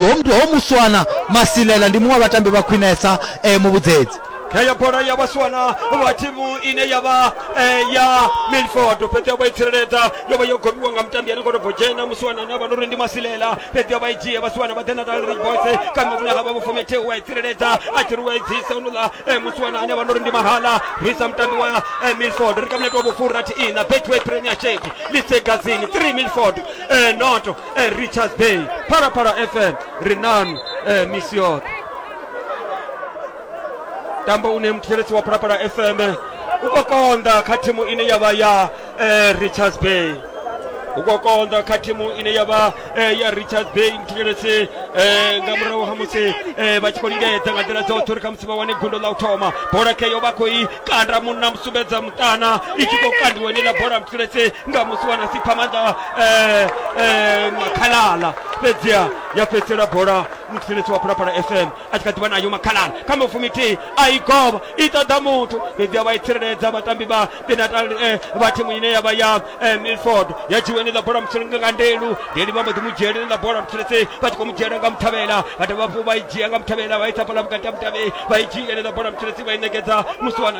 Ho muthu ho muswana Masilela ndi muṅwe wa vhatambi vha khwinesa eh, mu vhudzedzi. kha ya bola ya vhaswana vha thimu ine ya vha eh, ya milford fhedzi vha i tsireledza yo vha yo gomiwa nga mutambi ane koto bodzhena musiwana ane a vha no ri ndi masilela fhedzi vha i dzhie vhasiwana vha ḓena dalrich boys kana vhune ha vha vhufomete wa i tsireledza a tshi ri wa i dzisa unola eh, musiwana ane a vha no ri ndi mahala risa mutambi wa eh, milford ri kamnete wa vhufurathi ina betway premiership lisegazini 3 milford eh, noto e richards bay phalaphala fm ri nanu e misi yoṱhe tambo une muthetshelesi wa phalaphala fm u khou konḓa kha thimu ine ya vha ya eh, richards bay u khou konḓa kha thimu ine ya vha eh, ya richards bay muthetshelesi eh, nga murahu ha musi eh, vha tshi khou lingedza nga nḓila dzoṱhe uri khamusi vha wane gundo ḽa u thoma bola keyo vha khou i kanda munna musumbedza muṱana i tshi khou kandiwa ine ḽa bola muthetshelesi nga musi wana sipha maanḓa eh, eh, makhalala fhedziha ya fhedzisela bola mutsireletsi wa phalaphala fm a tshi kha ḓivha nayo makhalala kha mafumi thihi a i govha i ṱoḓa muthu fhedziha vha i tsireledza vhatambi vha benatal eh, vha thimu ine ya vha ya eh, milford ya dzhiwa ine ḽa bola mutsireledzi nga ndelu ndeli vha mbo ḓi mu dzhiela ine ḽa bola mutsireledzi vha tshi khou mu dzhiela nga muthavhela vha dovha hafhu vha i dzhia nga muthavhela vha i tsa fhala vhukati ha mutavheli vha i dzhia ine ḽa bola mutsireledzi vha i ṋekedza musi wana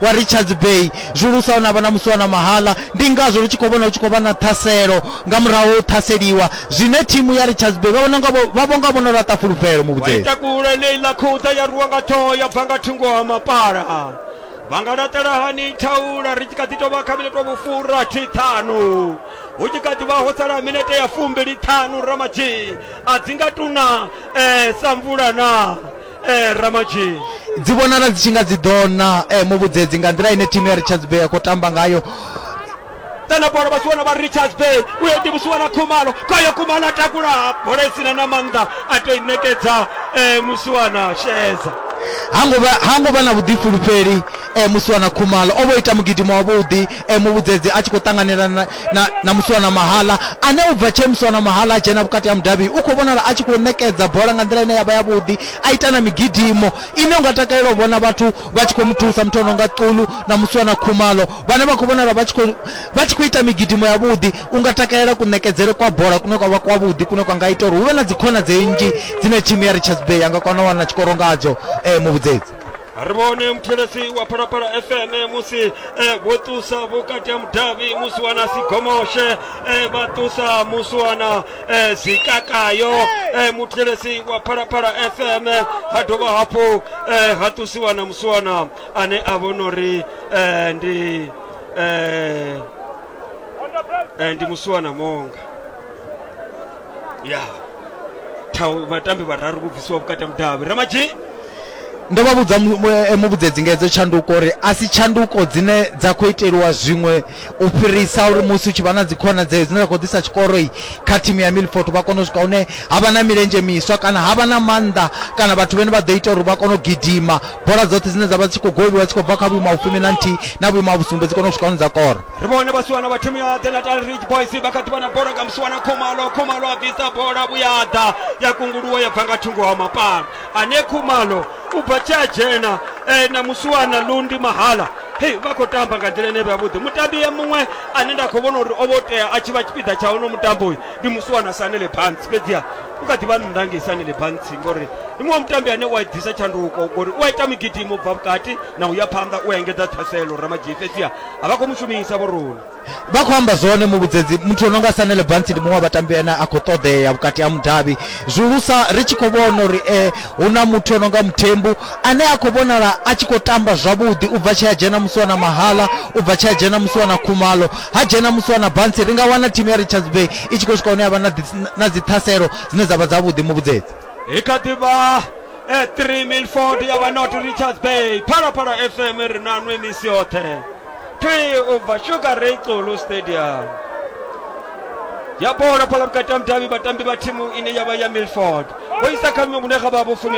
wa Richards Bay zwulusa na vha na musi na mahala ndi ngazwo lu tshi khou vhona hu tshi khou vha na ṱhaselo nga murahu u ṱhaseliwa zwine thimu ya Richards Bay vha vhona nga vha vho nga vhono laṱa fulufhelo muvhudzeli takula Leila Khouta ya ruwa nga ṱhoho ya bva nga thungo ha mapala vha nga laṱela hani thaula ri tshi kha ḓi tou vha kha minete wa vhufura thi ṱhanu hu tshi kha ḓi vha ho sala minete ya fumbili ṱhanu ramadzhi a dzi nga tuna um sa mvula na eh, ramadzhini dzi vhonala dzi tshi nga dzi ḓo na eh, muvhudzedzi nga nḓila ine thimu ya richards bay ya khou tamba ngayo tana bola vha tshi vhona vha richards bay u yo ḓivhusiwa na khumalo kwayo khumalo a takula bola isina na maanḓa a to i ṋekedza eh, musiwana sheedza ha ngo vha ha ngo vha na vhuḓifulufheli e, Musiwana Khumalo o vho ita mugidimo wavhuḓi e, muvhudzedzi a tshi khou ṱanganela na, na, na Musiwana Mahala ane u bva tshee Musiwana Mahala a dzhena vhukati ha mudavhi u khou vhonala a tshi khou ṋekedza bola nga nḓila ine ya vha yavhuḓi a ita na migidimo ine unga takalela u vhona vhathu vha tshi khou mu thusa muthu ono nga Ṱulu na Musiwana Khumalo vhane vha khou vhonala vha tshi khou vha tshi khou ita migidimo yavhuḓi unga takalela kuṋekedzele kwa bola kune kwa vha kwavhuḓi kune kwa nga ita uri hu vhe na dzikhonadzeo nnzhi dzine thimu ya Richards Bay ya nga kona u wana tshikoro ngadzo e, muvhudzedzi ri vhone muthetshelesi wa phalaphala fm musi eh, vho ṱusa vhukati ha mudavhi musuwana sigomoshe eh, vha ṱusa musuwana eh, zikakayo muthetshelesi wa phalaphala fm ha dovha hafhu ha ṱusiwa na musuwana ane a vhona uri ndi ndi musuwana monga ya Tau- vhatambi vhararu vho bvisiwa vhukati ha mudavhi ramadzhi ndo vha vhudza mu- mu- eh, muvhudzedzi nga hedzo tshanduko uri a si tshanduko dzine dza khou iteliwa zwiṅwe u fhirisa uri musi u tshi vha na dzikhonadzeo dzine dza khou ḓisa tshikoroi kha thimu ya milfort vha kone u swika hune ha vha na milenzhe miswa kana ha vha na maanḓa kana vhathu vhene vha ḓo ita uri vha kone u gidima bola dzoṱhe dzine dza vha dzi tshi khou goviwa dzi khou bva kha vhuimo ha vhufumi na nthihi na vhuimo ha vhusumbe dzi kone u swika hune dza kora ri vhone vhasiwana vha thimu ya the natal ridge boys vha kha ḓi vha na bola nga musiwana khumalo khumalo a bvisa bola vhuyaḓa ya kunguluwa ya bva nga thungo ha mapana ane khumalo u bva tshi a dzhena e, na musiwana lundi mahala hei vha khou tamba nga nḓila ine vhavhuḓi mutambi ya muṅwe ane nda khou vhona uri o vho tea a tshi vha tshipiḓa tsha uno mutambo uyu ndi musiwana sanele bantsi fhedziha u kha ḓi vha nnḓa ngei sanele bantsi ngori ndi muṅwe mutambi ane u a ḓisa tshanduko ngori u a ita migidimo u bva vhukati na u ya phanḓa u a engedza ṱhaselo ramadzhii fhedziha a vha khou mu shumisa vhoroni vha khou amba zwone muvhudzedzi muthu ono nga sanele bansi ndi muṅwe wa vhatambi ane a khou ṱoḓea vhukati ha mudavhi zwihulusa ri tshi khou vhona uri um hu na muthu ono nga muthembu ane a khou vhonala a tshi khou tamba zwavhuḓi u bva tshi a dzhena musi wa na mahala u bva tshi a dzhena musi wa na khumalo ha dzhena musi wa na bansi ri nga wana thimu ya richards bay i tshi khou swika hune ya vha na dzi- na dziṱhaselo dzine dza vha dzavhuḓi muvhudzedzi hi kha ḓi vha e 3 milford ya vha not richards bay phalaphala fm ri na nwe misi yoṱhe thwi u bva sugar ray xulu stadium ya bola phala vhukati ha mudavhi vhatambi vha thimu ine ya vha ya milford vho isa kha miṅwe vhune ga vha vho fumi